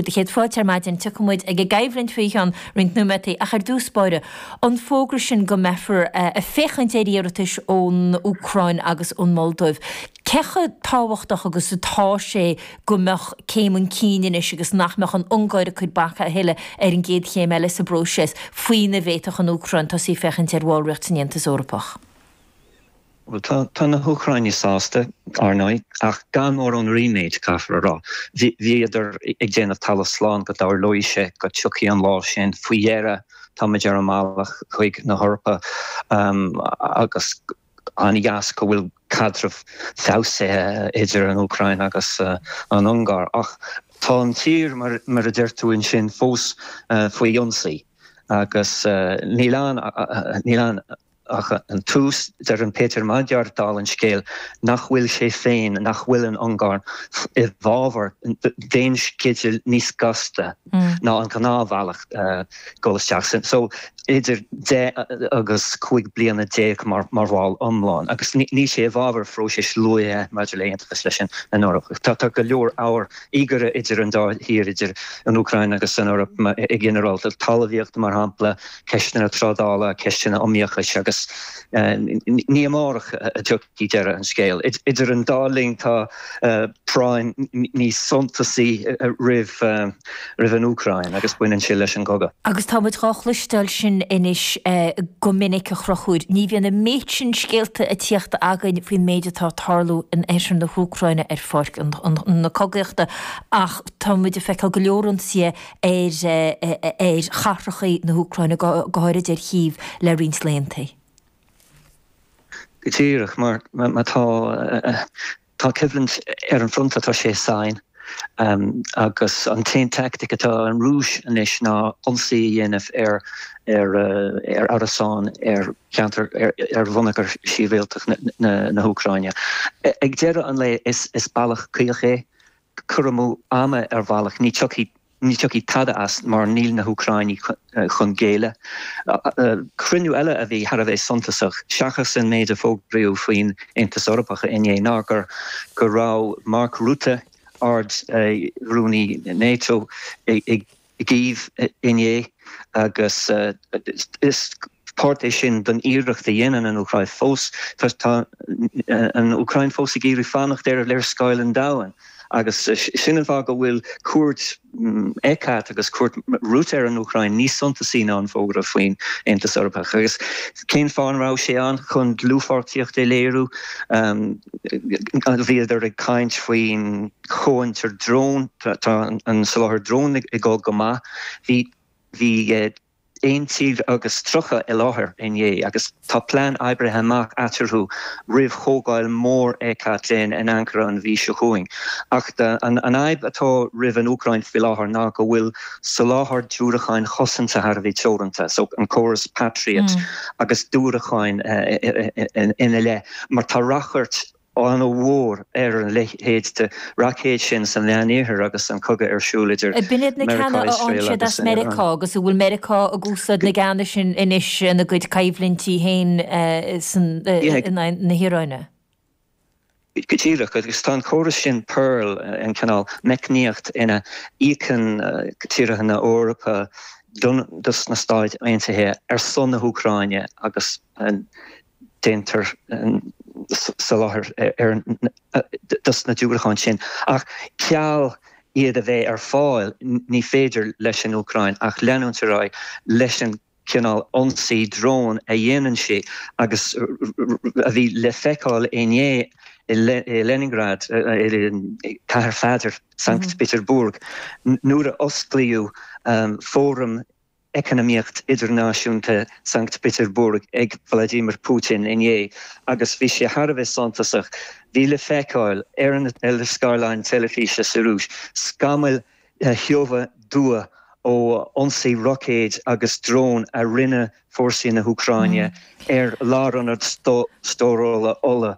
do chéad fáilte ar maidin, tiocfaimid ag an gcoimhlint faoi cheann roinnt nóiméataí ach ar dtús báire, an fógra sin go mbeifear ag féachaint ar iarratais ón Úcráin agus ón Moldóiv, cé chomh tábhachtach agus atá sé go mbeadh céim chun cinn anois agus nach mbeadh an Ungáir ag cur bac a thuilleadh ar an gcéad chéim eile sa bpróiseas faoina bhféadfadh an Úcráin tosaí a féachaint ar bhallraíocht san Aontas Eorpach? Bhuel, tá na hÚcráinigh sásta, ár ndóigh, ach gan mórán ríméid, caithfear a rá. Bhíodar ag déanamh talamh slán go dtarlódh sé, go dtiocfadh an lá sin. Faoi dheireadh, táimid ar an mbealach chuig na hEorpa agus an-dheas go bhfuil caidreamh feabhsaithe idir an Úcráin agus an Ungáir. Ach tá an tír, mar a deir tú ansin, fós faoi ionsaí agus níl ann ach. Ach an tús, deireann Peter Magyar, dála an scéil, nach bhfuil sé féin, nach bhfuil an Ungáir, i bhfabhar aon sceideal níos gasta ná an ghnáthbhealach dul isteach san so idir deich agus cúig bliana déag mar bhall iomlán agus níl sé i bhfabhar phróisis luaithe maidir le haontachas leis an Eoraip. Tá go leor ábhar íogaire idir an dá thír, idir an Úcráin agus an Eoraip i ginearálta, talmhaíocht mar shampla, ceisteanna trádála, ceisteanna iomaíochais agus ní amárach a thiocfaidh deireadh an scéil. Idir an dá linn tá práinn níos suntasaí roimh an Úcráin agus baineann sé leis an gcogadh. Agus tá muid dhá chloisteáil sin anois go minic ar chaoi ar bith, ní bhíonn an méid sin scéalta a tíocht againn faoin méid atá ag tarlú in oirthear na hÚcráine ar pháirc na cogaíochta ach tá muid ag feiceáil go leor ionsaithe ar chathracha na hÚcráine, go háirid ar Chív, le roinnt laethanta. Go díreach, mar tá coimhlint ar an fronta tá sé i sáinn, agus an t-aon teaictic atá ag an Rúis anois ná ionsaí a dhéanamh ar árasáin ar cheantar, ar bhonneagar shibhialtach na hÚcráine. Ag deireadh an lae, is bealach caoch é. cur amú ama ar bhealach, ní tiocfaidh tada as mar níl na hÚcráinigh chun géilleadh. Cruinniú eile a bhí thar a bheith suntasach, seachas an méid a fógraíodh faoin Aontas Eorpach inné, ná go raibh Mark Rutte, Ard Rúnaí Nato, i gCív inné agus is páirt é sin den iarracht a dhéanann an Úcráin fós. Tá an Úcráin fós ag iarraidh fanacht ar léarscáil an domhain agus sin an fáth go bhfuil cuairt Eckert agus cuairt Rutte ar an Úcráin níos suntasaí ná an fógra faoin Aontas Eorpach. Agus cén fáth a raibh sé ann? Chun dlúthpháirtíocht a léiriú. Bhíodar ag caint faoin. comhfhiontar drón, tá an soláthar drón ag dul go maith, bhí 31 tír i láthair inné agus tá plean oibrithe amach eatarthu roimh chomhdháil mhór ECAT féin in Ankara an mhí seo chugainn. Ach an fhadhb atá roimh an Úcráin faoi láthair ná go bhfuil soláthar diúracáin chosanta thar a bheith teoranta, so an córas Patriot agus diúracáin ina leith, mar tá ráchairt. an-mhór ar a leithéid de roicéad sin sa Mheánoirthear agus an cogadh ar siúl idir B'in iad na ceanna Meiriceá, a fhaigheann Iosrael siad agus as an. Meiriceá agus a bhfuil Meiriceá ag úsáid na gceanna sin anois ina gcuid coimhlintí féin in aghaidh na hIaráine. Go díreach, agus tá an córas sin PURL, an cineál meicníocht ina n-íocann tíortha na hEorpa do dos na Stáit Aontaithe ar son na hÚcráine agus an. déantar soláthar dos na diúracáin sin, ach ceal iad a bheith ar fáil ní féidir leis an Úcráin ach leanúint ar aghaidh leis an chineál ionsaí drón a dhéanann sí agus a bhí le feiceáil inné i Leningrad, Cathair Pheadair, Sankt Peterburg, nuair a osclaíodh fóram. eacnamaíochta idirnáisiúnta Sankt Peterburg ag Vladimir Putin inné agus bhí sé thar a bheith suntasach. Bhí le feiceáil ar na scáileáin teilifíse sa Rúis scamaill thiubha dhubha ó ionsaí roicéad agus drón a rinne fórsaí na hÚcráine ar lárionad stórála ola.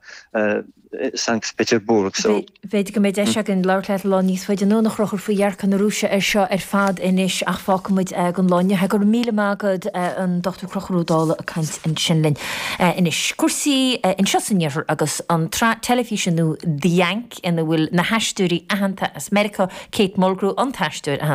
Sankt Peterburg so. B'fhéidir go mbeidh deis againn labhairt leat lá níos faide anonn, a Chonchúir, faoi dhearcadh na Rúise air seo ar fad anois, ach fágfaidh muid é don lá inniu. Go raibh míle maith agat, an Dr. Conchúr Ó Dálaigh, ag caint ansin linn. Anois, cúrsaí anseo san Iarthar agus an tsraith teilifíse nua The Yank ina bhfuil na haisteoirí aitheanta as Meiriceá, Kate Mulgrew, an t-aisteoir a